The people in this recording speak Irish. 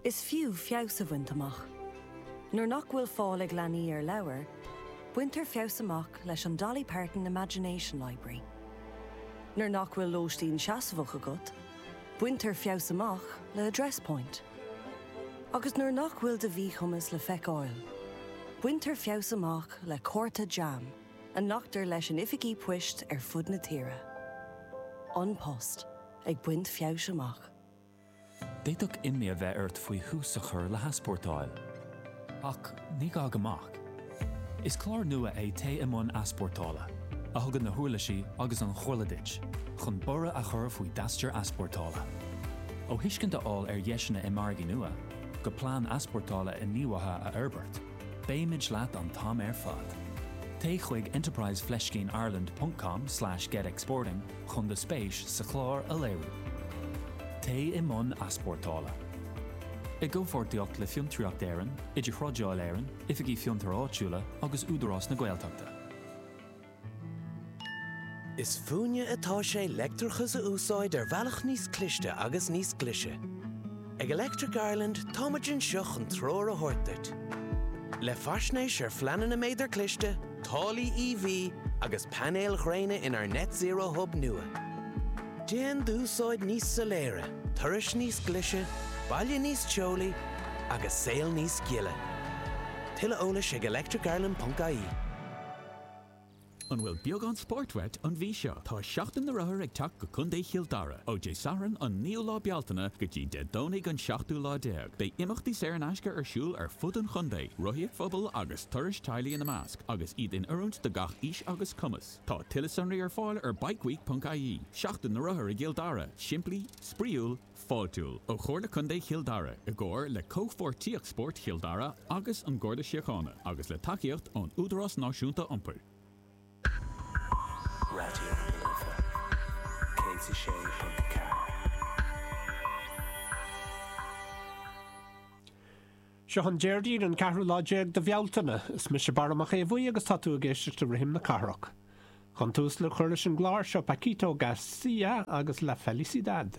Is fiú feabhas a bhaint amach. Nuair nach bhfuil fáil ag leanaí ar leabhair, baintear feabhas amach leis an Dolly Parton Imagination Library. Nuair nach bhfuil lóistín seasmhach agat, baintear feabhas amach le Address Point. Agus nuair nach bhfuil do mhíchumas le feiceáil, baintear feabhas amach le cárta JAM a nglactar leis in oifigí poist ar fud na tíre. An Post. Ag baint feabhais amach. D'fhéadfadh imní a bheith ort faoi thús a chur le heaspórtáil. Ach ní gá go mbeadh. Is clár nua é Téigh i mbun Easpórtála, a thugann na huirlisí agus an chomhairle duit chun borradh a chur faoi d'aistear easpórtála. Ó thuiscint a fháil ar dheiseanna i margaí nua, go plean easpórtála inníomhaithe a fhorbairt, beimid leat an t-am ar fad. Téigh chuig enterprise fleiscín ireland.com slash getexporting chun do spéis sa chlár a léiriú. Téigh i mbun easpórtála. I gcomhpháirtíocht le Fiontraíocht Éireann, Idirthrádáil Éireann, Oifigí Fiontair Áitiúla agus Údarás na Gaeltachta. Is fúinne atá sé leictreachas a úsáid ar bhealach níos cliste agus níos glise. Ag Electric Ireland táimid anseo chun treoir a thabhairt duit. Le faisnéis ar phleananna méadar cliste, táillí EV agus painéil ghréine inár Net Zero Hub nua. Déan d'úsáid níos soiléire, turais níos glise, baile níos teolaí agus saol níos gile. Tuilleadh eolais ag electricireland.ie. An bhfuil beagán spóirt uait an mhí seo? Tá Seachtain na Rothar ag teacht go Contae Chill Dara! Ó Dé Sathairn an 9ú lá Bealtaine go dtí Dé Domhnaigh an 7ú lá déag, beidh imeachtaí saor in aisce ar siúl ar fud an chontae, rothaíocht phobail agus turais teaghlaigh ina measc, agus iad in oiriúint do gach aois agus cumas. Tá tuilleadh sonraí ar fáil ar bikeweek.ie. Seachtain na Rothar i gCill Dara, simplí, spraíúil, fáiltiúil ó Chomhairle Contae Chill Dara i gcomhar le Comhpháirtíocht Spóirt Chill Dara agus an Garda Síochána agus le tacaíocht ón Údarás Náisiúnta Iompair. Raidió na Life 106.4. Seo an Déardaoin an ceathrú lá déag de Bhealtaine. Is mise Barra Mac Aodha Bhuí agus tá tú ag éisteacht le Rithim na Cathrach. Chun tús le cur leis an gclár, seo Paquito García agus La Felicidad.